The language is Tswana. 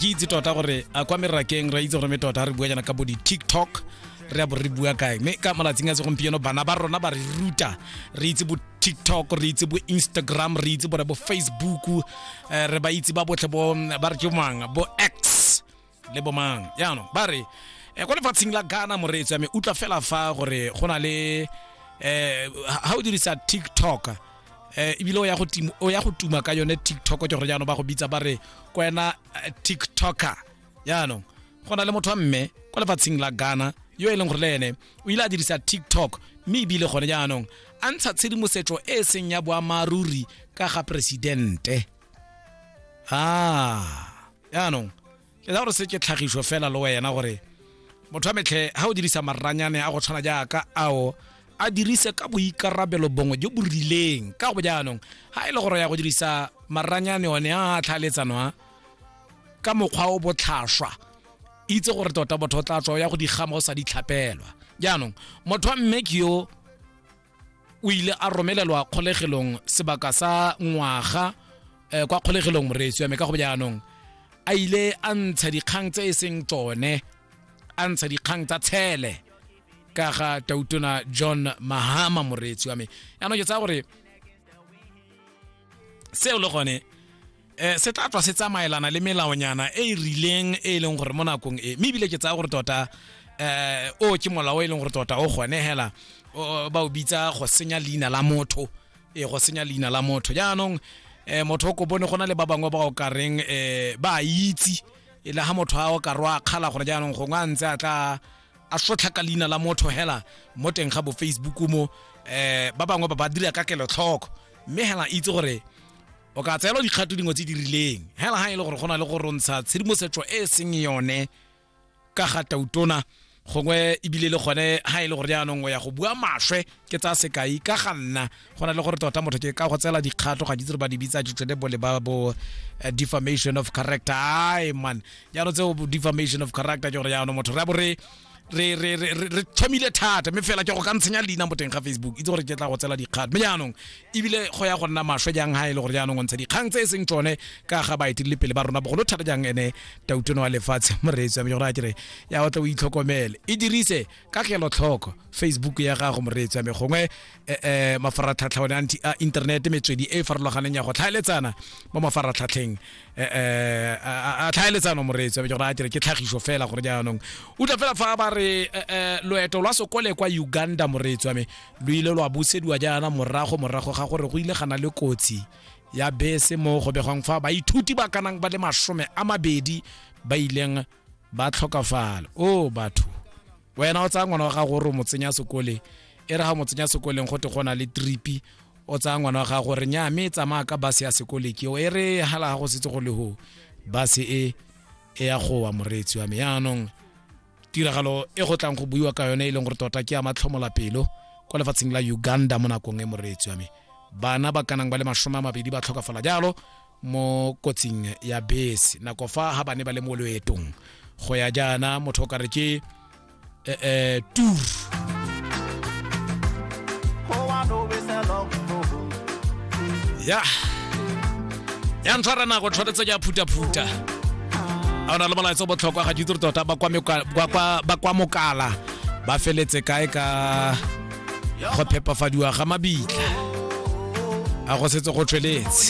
ke itse tota gore a kwa merakeng ra itse gore me tota re bua jana ka bo di-tiktok re a bo re bua kae mme ka malatsing a segompieno bana ba rona ba re ruta re itse bo tiktok re itse bo instagram re itse bone bo facebook um re ba itse ba botlhe bo ba re ke mang bo x le bo mang yaanong ba re um kwa lefatsheng la ghana moreetso ya me utlwa fela fa gore go na le um ga o dirisa tiktok eh ebile o ya go timo o ya go tuma ka yone TikTok ke gore jaanong ba go bitsa ba re kwena eh, TikToker jaanong go na le motho wa mme kwa lefatsheng la Ghana yo e leng gore le ene o ile a dirisa TikTok mme ebile gone jaanong a ntsha tshedimosetso e e seng ya boammaaruri ka ga presidente ah jaanong ke tsa gore se ke tlhagiso fela le wena gore motho wa metlhe ga o dirisa maranyane a go tshwana jaaka ao a dirise ka boikarabelo bongwe jo bo rileng ka go jaanong ga e le gore ya go dirisa maranyane one a tlhaeletsano a ka mokgwa o botlhaswa itse gore tota botho o tla tswa ya go digama o sa di tlhapelwa jaanong motho wa mme ke yo o ile a romelelwa kgolegelong sebaka sa ngwaga um kwa kgolegelong moreetsi wa me ka go jaanong a ile a ntsha dikgang tse e seng tsone a ntsha dikgang tsa tshele ka ga tautona john mahama moreetsi wa me yaanong ke tsaya gore seo le gone um se tla tswa se tsamaelana le melaonyana e e rileng e e leng gore mo nakong e mme ebile ke tsaya gore tota um o ke molao o e leng gore tota o gone hela o- ba o bitsa go senya leina la motho e go senya leina la motho jaanong um motho o ko bone go na le ba bangwe ba o ka reng um ba a itse e le ga motho a o ka rwa kgala gore jaanong gongwe a ntse a tla a sotlha ka leina la motho hela mo teng ga bo facebook mo um ba bangwe ba ba dira ka kelotlhoko mme hela itse gore o ka tseelwa dikgato dingwe tse di rileng hela ga e le gore go na le go rontsha tshedimosetso e e seng yone ka ga tautona gongwe ebile le gone ha e le gore jaanong o ya go bua maswe ke tsa sekai ka ga nna go na le gore tota motho ke ka go tseela dikgato ga ditse re ba di bitsa ditšedebole ba bo eh, defamation of character ai man jaanong tseo defamation of character ke gore jaanong motho re a bo re re re re re- re thomile thata mme fela ke go ka ntshenya leina mo teng ga facebook itse gore ke tla go tsela dikgang mme jaanong ebile go ya go nna maswe jang ga e le gore jaanong o ntsha dikgang tse e seng tsone ka ga baetelele pele ba rona bogolo thata jang ene tautono wa lefatshe moreetsi wa me gore a kere ya o tle o itlhokomele e dirise ka kelotlhoko facebook ya gago moreetsi wa me gongwe eh, eh, mafaratlhatlha one anti- a internet metswedi e e farologaneng ya go tlhaeletsana mo mafaratlhatlheng eh, eh, a tlhaeletsano moreetsi ke gore a kere ke tlhagiso fela gore jaanong utlwa fela fa ba re eh, loeto lwa sokole kwa uganda moreetsi wa me lo ile lwa busediwa jaana morago morago ga gore go ile gana le kotsi ya bese mo go begwang fa baithuti ba kanang ba le masome a mabedi ba ileng ba tlhokafala o oh, batho wena o tsaya ngwana wa gago gore o mo tsenya sekole e re ga mo tsenya sekoleng go te go na le tripi o tsaya ngwana wa gago gore nya mme e tsamaya ka base ya sekole ke e re hala ga go setse go le ho base e e ya gowa moreetsi wa me yaanong tiragalo e go tlang go buiwa ka yone e leng gore tota ke ya matlhomola pelo kwa lefatsheng la uganda mo nakong e moreetsi wa me bana ba kanang ba le masome a mabedi ba tlhokafala jalo mo kotsing ya bese nako fa ha ba ne ba le mo loetong go ya jaana motho o kare ke eh, eh, tour ya ya ntshwara nako tshwanetse ke a phutaphuta a o na le molaetsa o botlhokwa ga ditiro tota ba kwa meka- ba kwa- ba kwa mokala ba feletse kae ka go phepafadiwa ga mabitla a go setse go tshweletse